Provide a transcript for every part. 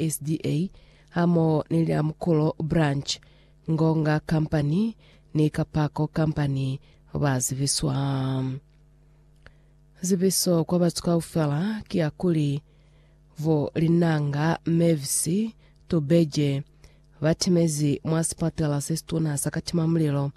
SDA hamoho ni Liamukulo Branch, Ngonga Company ni Kapako Company ba zibiswa. Zibiso kwa batu kaufela ki ya kuli vo Linanga Mavis Tubeje ba timezi mwa sipatela se situna sa katimamulilo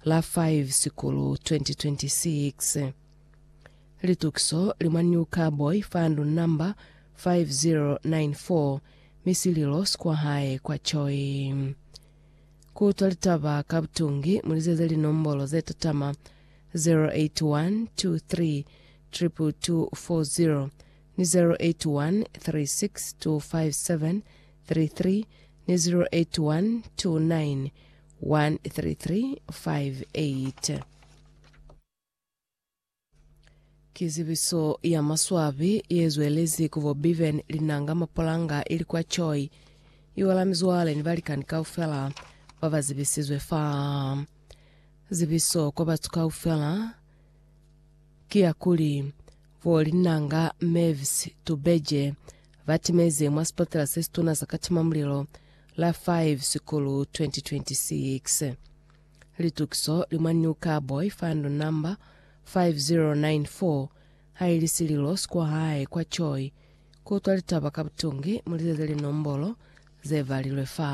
la 5 Sikulu 2026. Litukiso li mwa New Carboy fa ndu namba 5094 mi sililo si kwa hae kwa Choi. Ku utwa litaba ka butungi, mu lizeze linombolo ze tatama 0812322240 ni 0813625733 ni 0812913358. Ki zibiso ya maswabi ye zwelezi ku bo Bevan, Linanga, Mapolanga ili kwa Choi. Iwala mizwale ni balikani kaufela ba ba zibisizwe fa. Zibiso kwa batu kaufela ki ya kuli bo Linanga, Mavis, Tubeje ba timeze mwa sipatela se situna sa katimamulilo la Five Sekulu 2026. Litukiso li mwa New Car Boy Fund Number 5094 ha ili sililo si kwa hae kwa Choi ku utwa litaba ka butungi mu lizeze linombolo ze valilwe fa.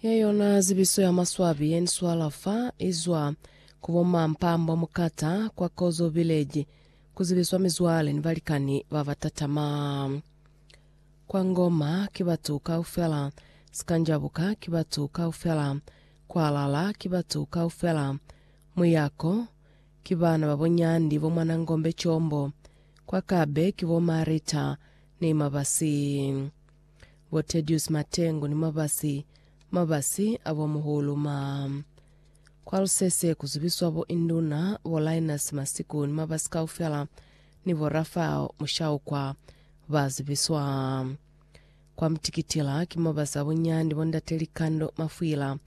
Ye yona zibiso ya maswabi ye ni swala fa izwa ku bo ma Mpambo Mukata kwa Kozo Village ku zibiswa mizwale ni balikani ba ba tatama. Kwa Ngoma ki batu kaufela, Sikanjabuka ki batu kaufela, Kwalala ki batu kaufela, Muyako ki bana ba bonyandi bo mwana Ngombe Combo, kwa Kabe ki bo Marita ni Mabasi. Bo Tedius Matengu ni Mabasi Mabasi a bo Muhulu ma Kwa Lusese ku zubiswa bo Induna, bo Linus Masiku ni Mabasi kaufela ni bo Raphael Mushaukwa ba zubiswa Kwa Mutikitila ki Mabasi a bo Nyandi bo Ndate Likando Mafwila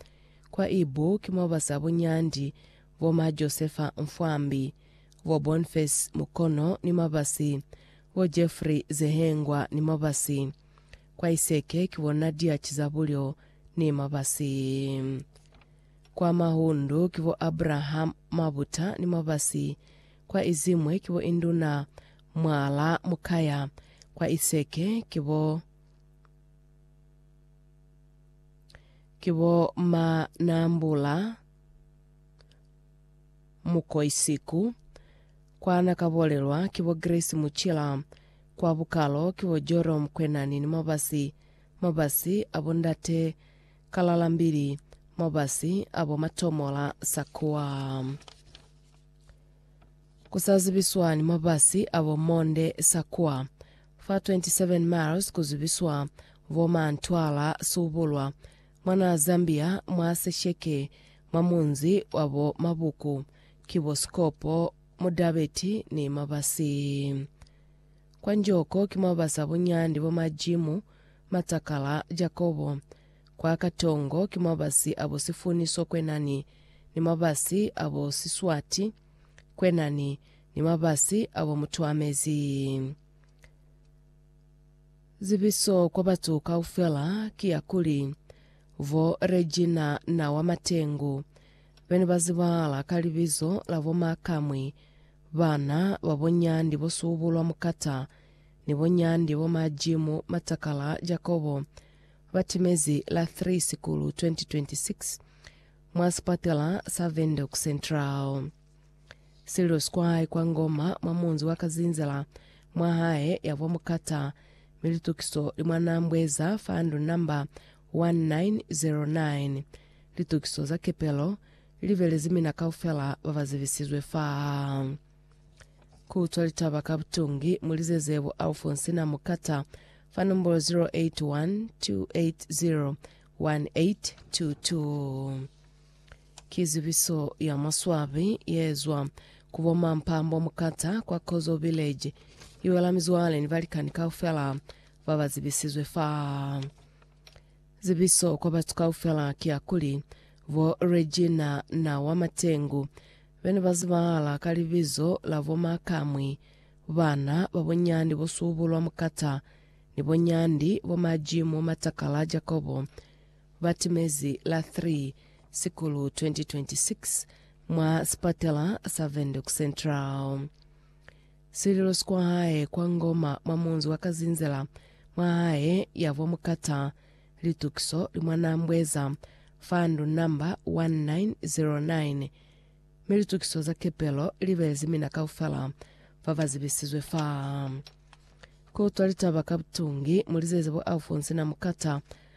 Kwa Ibu ki Mabasi a bo Nyandi bo ma Josefa Mfwambi bo Boniface Mukono ni mabasi, bo Jeffrey Zehengwa ni mabasi. Kwa Iseke ki bo Nadia Chizabulyo ni mabasi. Kwa Mahundu ki bo Abraham Mabuta ni mabasi. Kwa Izimwe ki bo Induna Mwala Mukaya. Kwa Iseke ki bo ki bo Manambula. Mukoisiku, kwa na ka bolelwa ki bo Grace Muchila, kwa bukalo ki bo Jorom Kwenani ni mabasi, mabasi a bo Ndate Kalalambili, mabasi a bo Matomola Sakua. Ku sa zibiswa ni mabasi a bo Monde Sakua, fa 27 miles ku zibiswa bo Mantwala Subulwa, Mwanaa Zambia mwa sesheke mwa munzi wa bo mabuku ki bo Sikopo, Mudabeti ni Mabasi. Kwa Njoko ki mwa basa bunyandi bo Majimu, Matakala, Jakobo. Kwa Katongo ki mwa basi a bo Sifuni so kwenani ni mabasi a bo Siswati kwenani ni mabasi a bo Mutuamezi. Zibiso kwa batu kaufela ki ya kuli, Bo Regina na wa Matengu, be ne ba zibahala ka libizo la bo Makamwi, bana ba bo Nyandi bo Subulwa Mukata, ni bo Nyandi bo Majimu Matakala Jakobo, ba timezi la 3 Sikulu 2026, mwa sipatela sa Windhoek Central. Sililo sikwai kwa Ngoma mwa munzi wa Kazinzela mwa hae yavwa mukata mi litukiso li mwa Nambweza fa ndu namba 1909. Litukiso za kepelo li belezi mina kaufela ba ba zibisizwe faa. Ku utwa litaba ka butungi mu lizeze bo Alfonsina Mukata fa nombolo 081 280 1822. Ki zibiso ya maswabi ye zwa ku bo Mampambo Mukata kwa Kozo Village. I wela mizwale ni balikani kaufela ba ba zibisizwe fa. Zibiso kwa batu kaufela ki ya kuli, bo Regina na wa Matengu be ne ba zibahala ka libizo la bo Makamwi, bana ba bo Nyandi bo Subulwa Mukata ni bo Nyandi bo Majimu Matakala Jakobo. ba timezi la 3 Sikulu 2026 mwa sipatela sa Windhoek Central. Sililo si kwa hae kwa Ngoma mwa munzi wa Kazinzela mwa hae ya vwa Mukata Litukiso Limwanambweza fa ndu namba 1909 mi litukiso za kepelo li belezi mina kaufela fa ba zibisizwe fa ku utwa litaba ka butungi mu lizeze bo Alphonse na Mukata